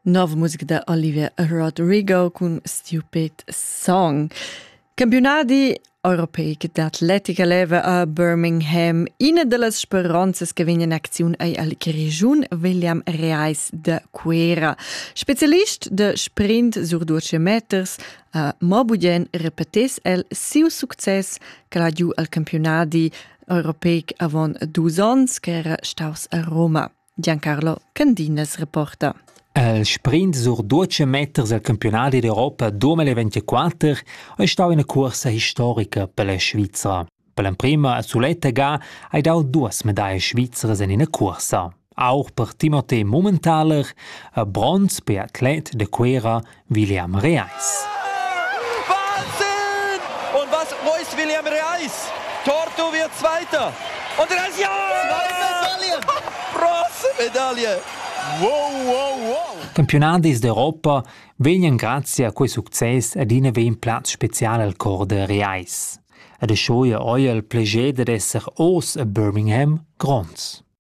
Nova musica da Olivier Rodrigo cun Stupid Song. Campionadi europeic d'atletica leva a Birmingham ina da las speranzas che vegn in acziun ei al regiun William Reis de Cuera. Specialist de sprint sur 12 meters a Mobugen repetes el siu success che ha giu al campionadi europeic avon dus onns che era staus a Roma. Giancarlo Candinas reporta. Il sprint sur 12 meters al campionat d'Europa 2024 è stau ina cursa historica per la Svizra. Per l'emprima a Suletta Ga hai dau duas medaglie svizzeres in ina cursa. Auch per Timothée Mummentaler, a bronz per atlet de Cuera William Reis. Wahnsinn! Und was reißt William Reis? Torto wird Zweiter. Und er ist ja! Bronzemedaille! Wow, wow, wow! Campionadis d'Europa vegnan grazie a quei success adina vegn plaz special al cor de Reis. Ed e schoia oi el pleiger dad esser os a Birmingham gronds.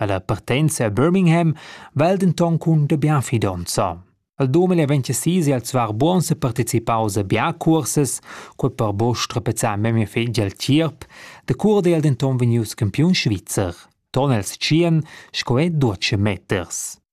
Ella partenza a Birmingham val denton cun de bien fidonza. Al 2026 è el zwar buon se participaus a bia cursas, quei per bo strapezzar memia fetg el tierp, de cura è el denton vegnius campiun svizzer. Ton els tschien, sco è duce meters.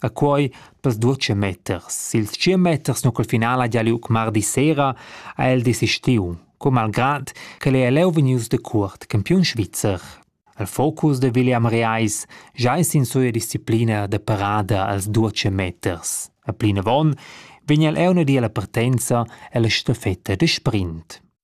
A quai t'as duocha metter. I'l tschient meters nu cul final haja liug mardi sera ha el desistiu, co malgrad ch'el ei leu vegnius decuort campiun svizzer. Il focus da William Reis già es in suia disciplina da parada als duocha meters. A plinavon vegn el eu di alla partenza ella staffetta da sprint.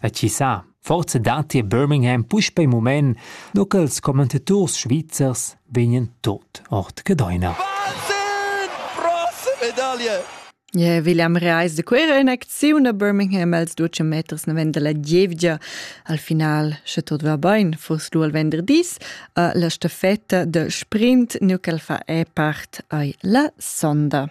E chi sa, forsa datti a Birmingham puspei mument, nu che ils commentators svizzers vegnan tot ord Gedeina. Wahnsinn! Prost Medaille! Yeah, William Reis de Quera in acziun a Birmingham als duce meters ne venda la gievgia. Al final, sche tot va bain, fuss du al venderdis, uh, la stafetta de sprint, nu ch'el fa e part ai la sonda.